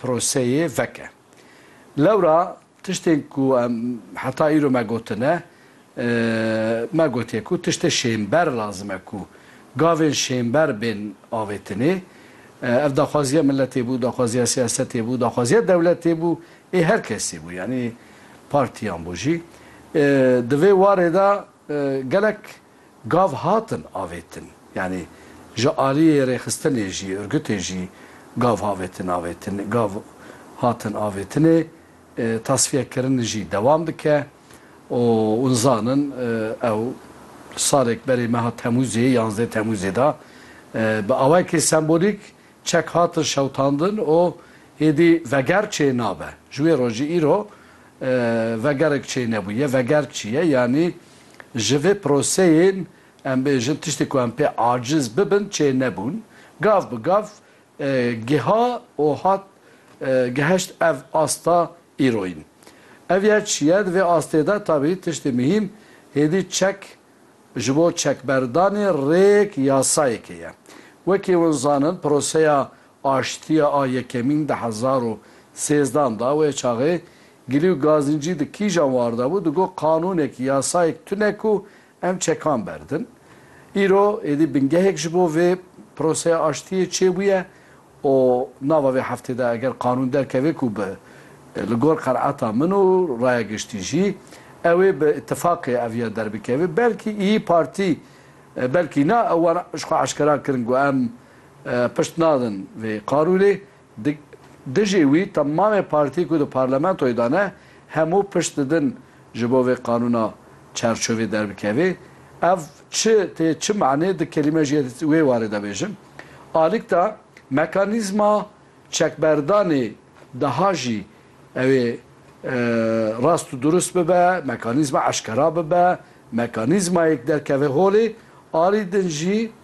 proseyê veke. Lewra tiştên ku em heta îro me gotine, me gotiye ku tiştê şênber lazim e ku gavên şênber bên avêtinê. Ev daxwaziya miletê bû, daxwaziya siyasetê bû, daxwaziya dewletê bû, ê her kesî bû, yanî partiyan bû jî. Di vê warê de gelek Gav hatin avêtin. Yanî ji aliyê rêxistinê jî, urgutê jî gav havêtin avêtin gav hatin avêtinê. Tasfiyekirin jî dewam dike û hûn zanin ew salek berê meha Temûzê, yanzdeh Temûzê de bi awayekî sembolîk çek hatin şewitandin û êdî veger çê nabe. Ji wê rojî îro Vegerg çê nebûye, vegerg çi ye? Yanî ji vê proseyên em bêjin tiştê ku em pê aciz bibin çê nebûn. Gav bi gav giha û hat geheşt ev asta îroyîn. Ev ya çi ye? Di vê astê de tabî tiştê mihîm hêdî çek ji bo çekberdanê rêk yasayekê ye. Wekî hûn zanin proseya Aştiya a yekemîn di hezar û sêzdan da wê çaxê gilî û gazincî di kîjan war de bû, di got qanûnek, yasayek tune ku em çekan berdin. Îro êdî bingehek ji bo vê proseya aştiyê çêbûye û nava vê heftê de eger qanûn derkeve ku bi li gor qenaeta min û raya giştî jî ew ê bi îtîfaqê ev ya derbikeve belkî Îyî Partî belkî na wan jixwe eşkera kirin ku em Pişt nadin vê qarûrê. Dijî wî temamê partî ku di parlamentoyê de ne hemû pişt didin ji bo vê qanûna çerçovê derbikevê. Ev çi tê çi manê di kelîme jî ez wê warê de bêjim. Alîkta mekanîzma çekberdanê daha jî ew ê rast û durust bibe, mekanîzma eşkera bibe, mekanîzmayek derkeve holê. Arî din jî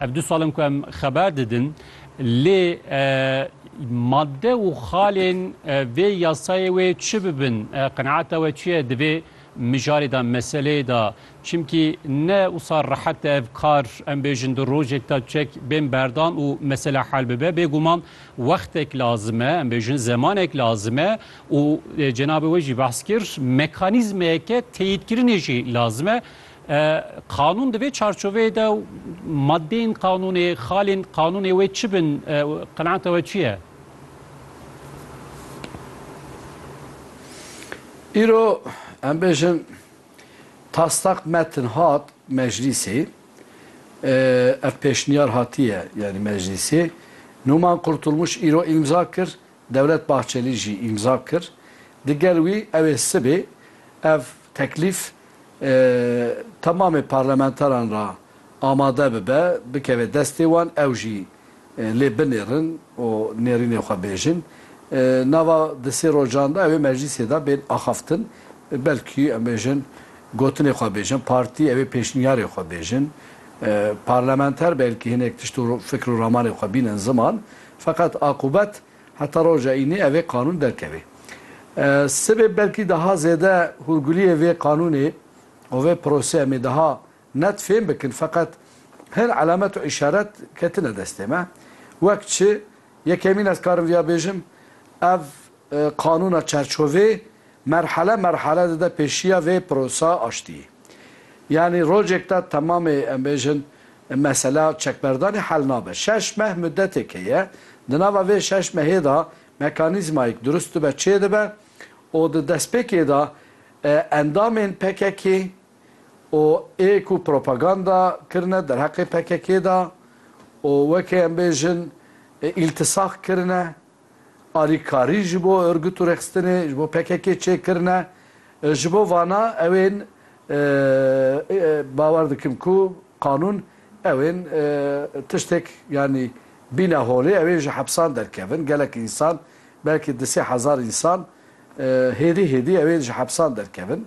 Ev du sal in ku em xeber didin, lê madde û xalên vê yasayê wê çi bibin, qenaeta we çi ye di vê mijarê de, meseleyê de? Çimkî ne wisa rehet e ev kar em bêjin di rojek de çek bên berdan û mesele hel bibe. Bêguman wextek lazim e, em bêjin zemanek lazim e û cenabê we jî behs kir, mekanîzmeyeke teyîdkirinê jî lazim e. Qanûn di vê çarçoveyê de û madeyên qanûnê, xalên qanûnê wê çi bin? Qenaeta we çi ye? Îro em bêjin taslak metin hat meclîsê, ev pêşniyar hatiye yanî meclîsê. Numan Kurtulmuş îro îmza kir, Devlet Bahçelî jî îmza kir. Digel wî ew ê sibê ev teklîf temamê parlamenteran re amade bibe, bikeve destê wan, ew jî lê binêrin û nêrînê xwe bêjin. Nava di sê rojan de ew ê meclîsê de bên axaftin. Belkî em bêjin gotinê xwe bêjin, partî ew ê pêşniyarê xwe bêjin. Parlamenter belkî hinek tişt û fikr û ramanê xwe bînin ziman. Feqet aqûbet heta roja înî evê qanûn derkevê. Sibê belkî daha zêde hûrguliyê vê qanûnê û vê proseya me daha net fêm bikin feqet hin elemet û îşaret ketine destê me. Wek çi, yekemîn ez karim vîya bêjim, ev qanûna çerçovê Merhale merhale dide pêşiya vê pirosa aştiyê. Yanî rojek de temamê em bêjin mesela çekberdanê hel nabe. Şeş meh mudetêk heye, di nava vê şeş mehê de mekanîzmayêk durust dibe çê dibe û di destpêkê de endamên pkk-ê û ê ku propaganda kirine derheqê pkk-ê de û weke em bêjin îltisak kirine Alîkarî ji bo Urgut û Rexistinê, ji bo pkk çêkirine. Ji bo vana ew ên bawer dikim ku qanûn ew ên tiştêk yanî bîne holê ew ên ji hepsan derkevin. Gelek însan belkî di sê hezar însan hêdî hêdî ew ên ji hepsan derkevin.